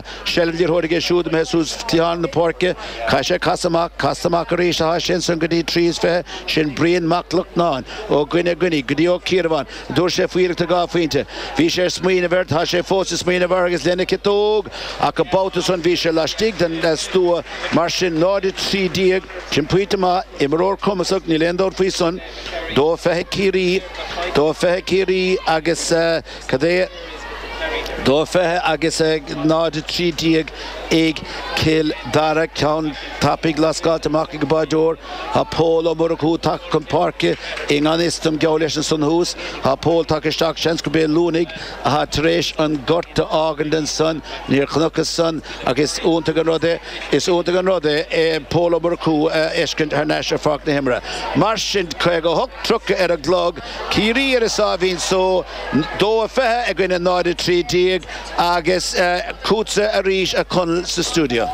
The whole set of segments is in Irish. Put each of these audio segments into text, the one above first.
seilbh tógtha aige siúd ag imeacht suas cliathán na páirce. Caithfidh sé casadh amach. Casta amach arís athá sé ansan go dtí trí is fiche. Sin Brian Mac Lochlainn. Ó gcoinne a gcoinnigh, go dtí Ó Ciarabháin. Tabhairt sé faoi iarracht dhá phointe. Bhí sé ag smaoineamh air, tá sé fós ag smaoineamh air agus lena chiotóg! Ach an babhta san bhí sé laistigh den stua. Mar sin, 0, 13, sin pointe amach. Imreoir cumasach, níl aon dabht faoi san. Dó fiche Ciarraí. Dó fiche Ciarraí agus. Cad é dó 20 agus a 0 13 ag Cill Dara, ceann tapaidh lascaithe amach ag an mbáideoir. Tá Pól Ó Murchú tagtha chun páirce i ngan fhios dom, geall leis ansan thuas. Tá Pól tagtha isteach, seans gurb é Luanaigh atá tar éis an gort a fhágaint ansan. Níor chnacthas san ach is iontach an rud é, is iontach an rud é Pól Ó Murchú a fheiscint thar n-ais ar pháirc na himeartha. Mar sin, 58 30 ar an gclog. Ciarraí ar a sáimhín só, 2-20 i gcoinne 0-13, agus fútsa arís, a Chonaill, sa stiúideo.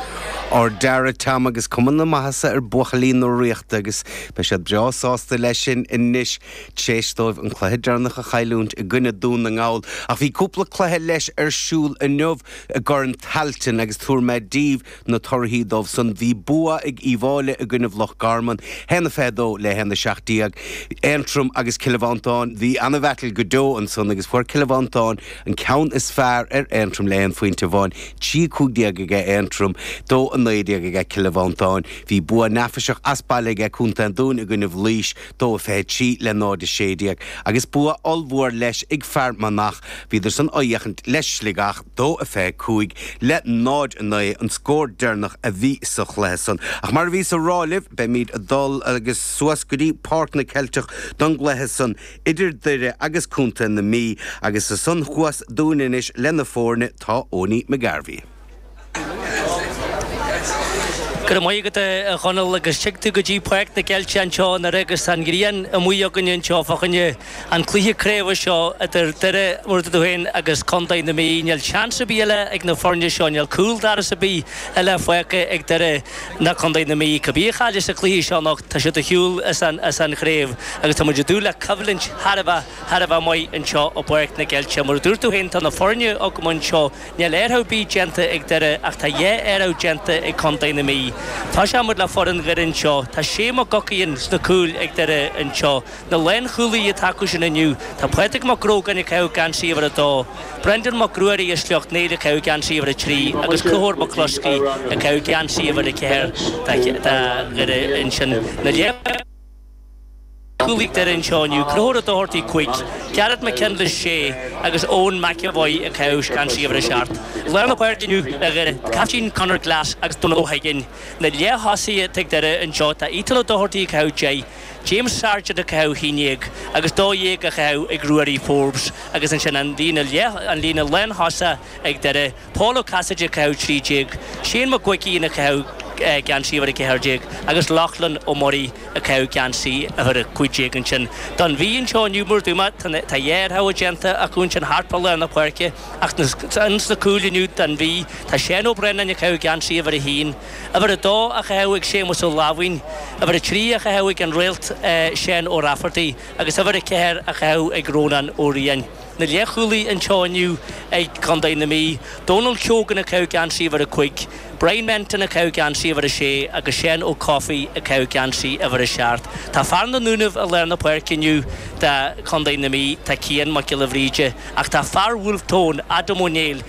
Ar deara Tom agus cuma na maitheasa ar bhuachaillí na Ríochta agus beidh siad breá sásta leis sin anois tar éis dóibh an cluiche deireanach a chailliúint i gcoinne Dún na nGall. Ach bhí cúpla cluiche leis ar siúl inniu i gCorn Tailteann agus tabharfaidh mé daoibh na torthaí dóibh san. Bhí bua ag Uíbh Fháilí i gcoinnibh Loch Garman, 1 22 le 1 17. Aontroim agus Cill Mhantáin, Bhí ana-bheaitl go deo ansan agus fuair Cill Mhantáin an ceann is fearr ar Aontroim le haon phointe amháin, 3 15 aige Aontroim, 2 19 aige Cill Mhantáin. Bhí bua neafaiseach as baile aige Co. an Dúin i gcoinnibh Laois, dó 23 le 0 16 agus bua ollmhór leis ag Fear Manach, bhíodar san ag imirt le Sligeach, dó 25 le 0 9 an scór deireanach a bhí sa chluiche san. Ach mar a bhíos á rá libh, beimíd ag dul agus suas go dtí Páirc na gCeilteach don gcluiche san idir Doire agus Contae na Mí agus ansan thuas dúinn anois leis na fóirne tá Eoiní McGarvey. Go raibh maith agat, a Chonaill, agus fáilte go dtí Páirc na gCeilteach anseo i nDoire agus tá an ghrian amuigh againne anseo fá choinne an cluiche craoibhe seo idir Doire, mar a dúirt tú féin, agus Contae na Mí. Níl seans ar bith eile ag na foirne seo, níl cúldoras ar bith eile fágtha ag Doire ná Contae na Mí. Cibé a chaillfidh sa chluiche seo anocht, tá siad ar shiúl as an chraobh agus tá muid ag dúil le coimhlint thar a bheith maith anseo i bPáirc na gCeilteach. Mar a dúirt tú féin, tá na foirne agam anseo. Níl athrú ar bith déanta ag Doire ach tá dhá athrú déanta ag Contae na Mí. Tosóidh muid le foireann Dhoire anseo. Tá Shea McGuckin sa chúl ag Doire anseo. Na lánchúlaí atá acu sin inniu. Tá Pádraig Mac Grógáin ag caitheamh geansaí uimhir a dó. Brendan Mac Ruairí as Sleacht Néill ag caitheamh geansaí uimhir a trí agus Conchúr McCluskey ag caitheamh geansaí uimhir a ceathair do Dhoire ansin. Cúlaithe ag Doire anseo inniu, Conchúr Doherty cúig, Gareth McKinless sé agus Eoin McEvoy ag caitheamh geansaí uimhir a seacht. Lár na páirce inniu ag Doire, Caiftín Conor Glass agus Dónal Ó hUiginn. Na leath-thosaithe atá ag Doire anseo tá Ethan Ó Doherty ag caitheamh deich, James Sargent ag caitheamh haon déag agus dó dhéag á chaitheamh ag Ruairí Forbes agus ansin an líne leath, an líne lántosaithe ag Doire. Pól Ó Casaide ag caitheamh 13, Séan Mac Uiginn ag caitheamh geansaí uimhir 14, agus Lochlainn Ó Muirí ag caitheamh geansaí uimhir 15, ansin don Mhí anseo inniu, mar a dúirt mé, tá dhá athrú déanta acu ansin thart fá lár na páirce, ach ins na cúil inniu don Mhí, tá Seán Ó Braonáin ag caitheamh geansaí uimhir 1, uimhir 2 á chaitheamh ag Séamus Ó Láimhín, uimhir 3 á chaitheamh ag an Réalt Seán Ó Raifeartaigh agus uimhir 4 á chaitheamh ag Rónán Ó Riain. na leathchúlaithe anseo inniu ag Contae na Mí, Dónal Keogan ag caitheamh geansaí uimhir a cúig, Bryan Menton ag caitheamh geansaí uimhir a sé agus Seán Ó Cofaigh ag caitheamh geansaí uimhir a seacht. Tá fear na nDúnaibh i lár na páirce inniu do Chontae na Mí, tá Cian Mac Giolla Bhríde, ach tá fear Bhulf Tón, Adam Ó Néill,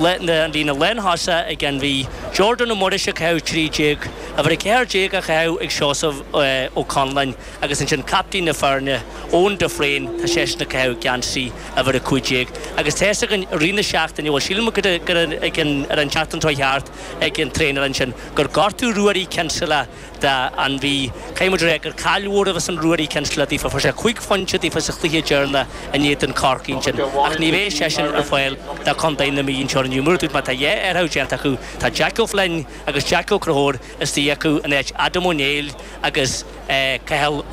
an líne lántosaithe ag an Mhí, Jordan Ó Muiris ag caitheamh 13, uimhir 14 á chaitheamh ag Seosamh Ó Conláin agus ansin captaen na foirne, Eoin de Fréin, tá seisean ag caitheamh geansaí uimhir 15 agus tá a fhios againn i rith na seachtaine, bhuel sílim gur ar an tseachtain seo a chuaigh thart ag an traenáil ansin gur gortaíodh Ruairí Kinsella don Mhí. Caithfidh muid a rá gur caill mhór a bheas ann Ruairí Kinsella daofa. Fuair sé cúig phointe daofa sa chluiche deireanach in éadan Chorcaí ansin ach ní bheidh seisean ar fáil do Chontae na Mí anseo inniu. Mar a dúirt mé tá dhá athrú déanta acu. Tá Jack Ó Floinn agus Jack Ó Conchúir istigh acu in áit Adam Ó Néill agus Cathal Ó